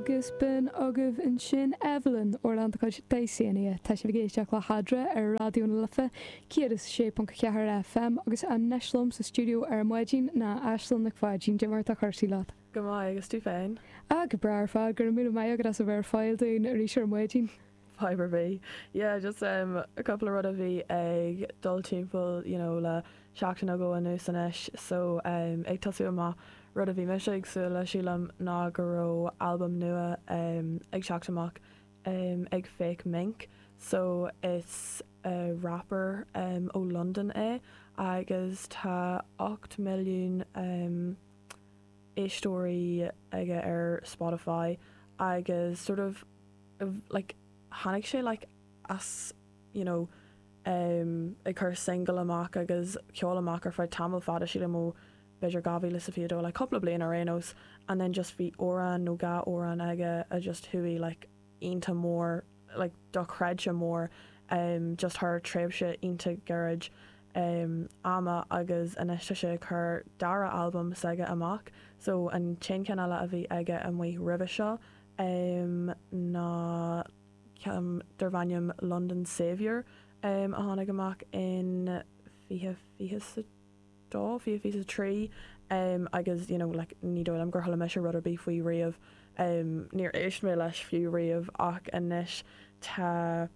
Agus b'in agaibh ansin Eibhlín, Ar Lán do Chuid, Dysania. Tá sibh ag éisteacht le hAdhradh ar Raidió na Life 106.4 FM agus anois liom sa stiúideo ar maidin ná Aislinn Nic Pháidín. Cad é mar tá cursaí leat? Go maith, agus tú féin? Ah, go breá ar fad, go raibh míle maith agat as a bheith ar fáil dúinn arís ar maidin. Fadhb ar bith. Yeah, just em, cúpla rud a bhí ag dul timpeall, you know, le seachtain nó dhó anuas anois. So, em, ag tosú amach, rud a bhí mise ag súil le, sílim, ná go raibh albam nua, em, ag teacht amach, em, ag Fakemink. So, is, eh, rapper, em, ó Londain é agus tá ocht milliún, em, éisteoirí aige ar Spotify agus sort of, like tháinig sé like as you know um ag cur single amach agus ceol amach ar feadh tamall fada sílim ó b'fhéidir 2022 like cúpla bliain ar aon nós and then just bhí amhrán nó dhá amhrán aige a just chuaigh like iontach mór like dochreidte mór um just thar tréimhse iontach gairid um ama agus anois tá sé ag cur dara albam s'aige amach so an t-aon cheann eile a bhí aige amuigh roimhe seo um ná ceann darb ainm London Saviour a tháinig amach in fiche fiche 's a dó, fiche fiche 's a trí agus you know like ní dóigh liom gur chuala mise rud ar bith faoi roimhe, níor éist mé leis fiú roimhe ach anois tá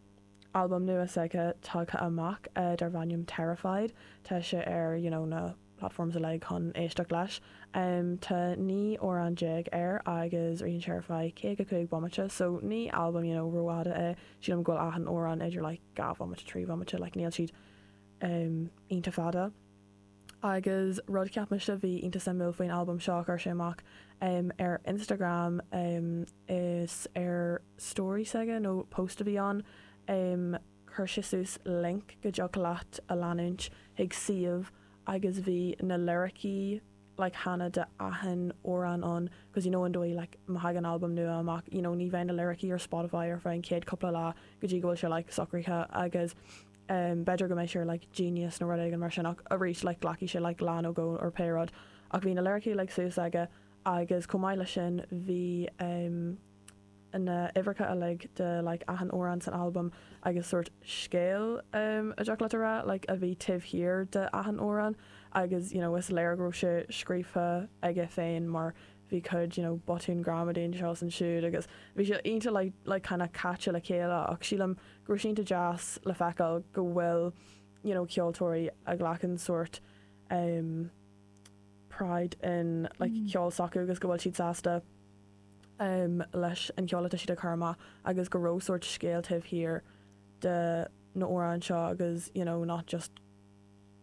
albam nua s'aige tagtha amach darb ainm Terrified, tá sé ar you know na. platforms uilig chun éisteacht leis. Tá naoi amhrán déag air agus ritheann sé ar feadh caoga cúig bomaite so ní albam you know ró-fhada é. Sílim go bhfuil achan amhrán idir like dhá bhomaite trí bhomaite like níl siad um iontach fada. Agus rud cheap mise bhí iontach suimiúil faoin albam seo chuir sé amach um ar Instagram um is ar story s'aige nó post a bhí ann um Chuir sé suas link go dtiocfadh leat a leanúint chuig suíomh agus bhí na liricí like kind of de achan amhrán ann cause you know an dóigh like má thagann albam nua amach you know ní bheidh na liricí ar Spotify ar feadh an chéad cúpla lá go dtí go bhfuil sé like socraithe agus em b'fhéidir go mbeidh sé ar like Genius nó rud éigin mar sin ach arís like glacfaidh sé like lá nó dhó or pé rud ach bhí na liricí like suas aige agus chomh maith leis sin bhí em na huimhreacha uilig de like achan amhrán san albam agus sórt scéal a dtiocfadh leat a rá like a bhí taobh thiar de achan amhrán agus you know is léir go raibh sé scríofa aige féin mar bhí cuid you know botún gramadaí anseo is ansiúd agus bhí sé iontach like like kind of caite le chéile ach sílim go raibh sé iontach deas le feiceáil go bhfuil you know ceoltóirí a ghlacann sórt um, pride in like mm. ceol s'acu agus go bhfuil siad sásta leis an cheol atá siad ag cur amach agus go raibh sórt scéal taobh thiar de na h-amhráin seo agus you know not just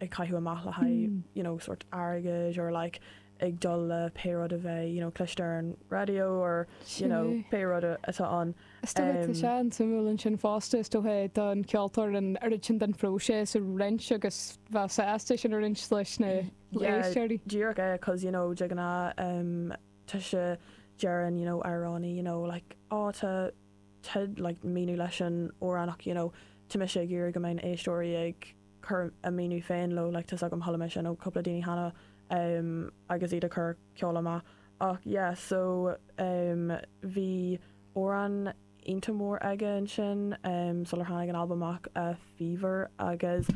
á gcaitheamh amach le haghaidh you know sort airgid or like ag dul le pé rud a bheadh you know cloiste ar an radio or pé rud atá ann. Is dócha go tá sé an-suimiúil ansin fosta, is dócha don cheoltóir an oiread sin den phróiseas a roinnt agus a bheith sásta é sin a roinnt leis na héisteoirí. Yeah díreach é 'cause you know de ghnáth tá sé deireann you know amhránaí you know like ó tá tá like míniú leis an amhrán ach you know tá mise ag iarraidh go mbeidh na héisteoirí ag cur a míniú féin leo like tá's agam chuala mise you know cúpla daoine cheana em agus iad ag cur ceol amach ach yeah so em bhí amhrán iontach mór aige ansin sular tháinig an albam amach, Fever, agus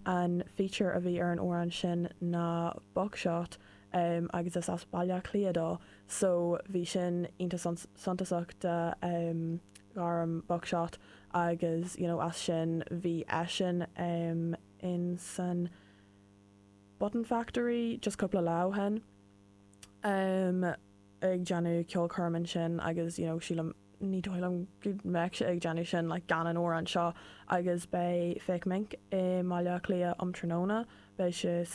an feature a bhí ar an amhrán sin ná Buckshot agus is as Baile Átha Cliath dó so bhí sin iontach suntasach do ghairm Buckshot agus you know as sin bhí eisean insan Button Factory just cúpla lá ó shin ag déanamh ceolchoirm ansin agus you know sílim Ní dóigh liom go mbeadh sé ag déanamh sin gan an amhrán seo agus beidh Fake Mink i mBaile Átha Cliath um tráthnóna, beidh sé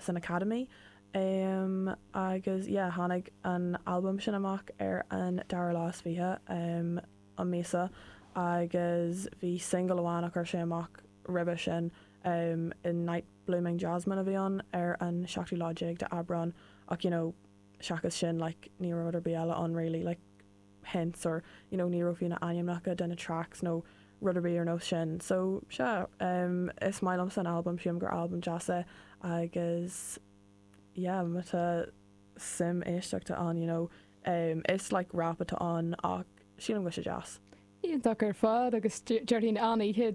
san Academy agus yeah tháinig an albam sin amach ar an dara lá is fiche um an míosa agus bhí singil amháin a chuir sé amach roimhe sin um Night Blooming Jasmine a bhí ann ar an seachtú lá déag d'Aibreán ach you know seachas sin like ní raibh rud ar bith eile ann really like hints or you know ní raibh fiú na hainmneacha de na tracks nó rud ar bith ar nós sin so sea em is maith liomsa an albam sílim gur albam deas é agus yeah má tá suim éisteachta ann you know em is like rap atá ann ach sílim go bhfuil sé deas Iontach ar fad agus deirhín annaíthe